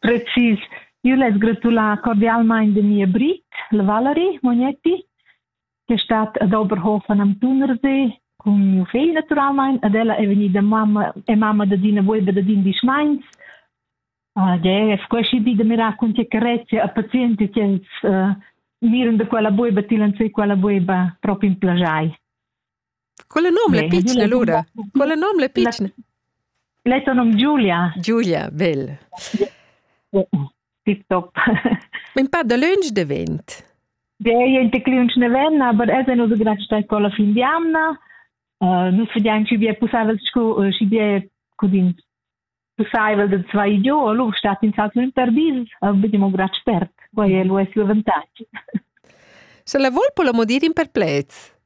Precis. Io less gratular cordialmaing de mia Brit, la Valerie Mognetti, che è stata ad Oberhof an Amtunersee cun mio figl naturalmaing, ad ella è vegnida mamma e mamma da Dina Weber da dindisch meins. Uh, de, es queschi di da mirar cun che carezia a pazienti che els uh, miren da quella bueba, tilan sei quella bueba proprio in plagiai. Quella nom le pitschna, Luda. Quella nom le pitschna. L'etto nom Giulia. Giulia, bel. Tip top. In pa da lunch devent. Dei en te lunch nevenna, aber es è nus grat stai con la fin di anna. Nus vediamo ci bie pusavel scu ci bie cudin pussaivel da zwei giu, lur stat in salto in perdis, a bidim un grad spert. Quai è lo l'avantatg. Se la vol po la modir in perplets?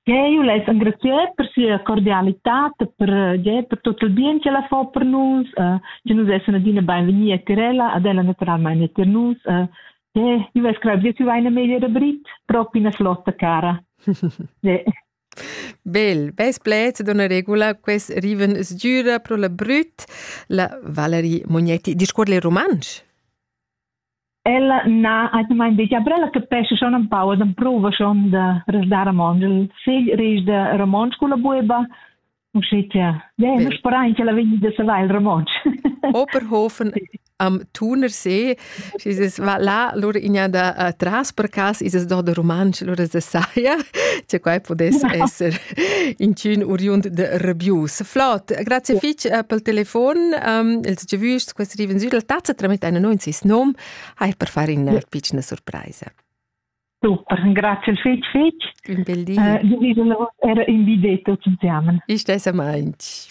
Che io l'hai engraziato per sia cordialità, per, ja, per tutto il bien che la fa per noi, uh, che noi essere adina benvenuti a Tirella, ad ella naturalmente per noi. Uh, che io screvo che tu vai in meglio rubrit, proprio una flotta cara. ja. Bel, beis pleds d'üna regula quels rivan sgüra pro la brüt la Valerie Mognetti. Discuorr'la in rumantsch? Ella na atgnamain detg, però ella capesce schon un pau, ed prova schon da resdar romontsch. Il figl ris de romontsch culla bueba, Uschia, ja, nu sperain ch'ella vegni da savair il romontsch. Oberhofen am Thunersee, es va là, lura igna da uh, tras per cas, is es do da rumantsch, lura se saia, che quai pudess esser inchün uriund de rebius. Flot, grazie fich uh, pel telefon, um, els ge vüst, quest riven sül la tazza, tramit eine 90 nom, hai per far in uh, piccina surpraisa. Super, grazie fitg fitg. Un bel di. Uh, era in videtto zusammen. Ich stesse meins.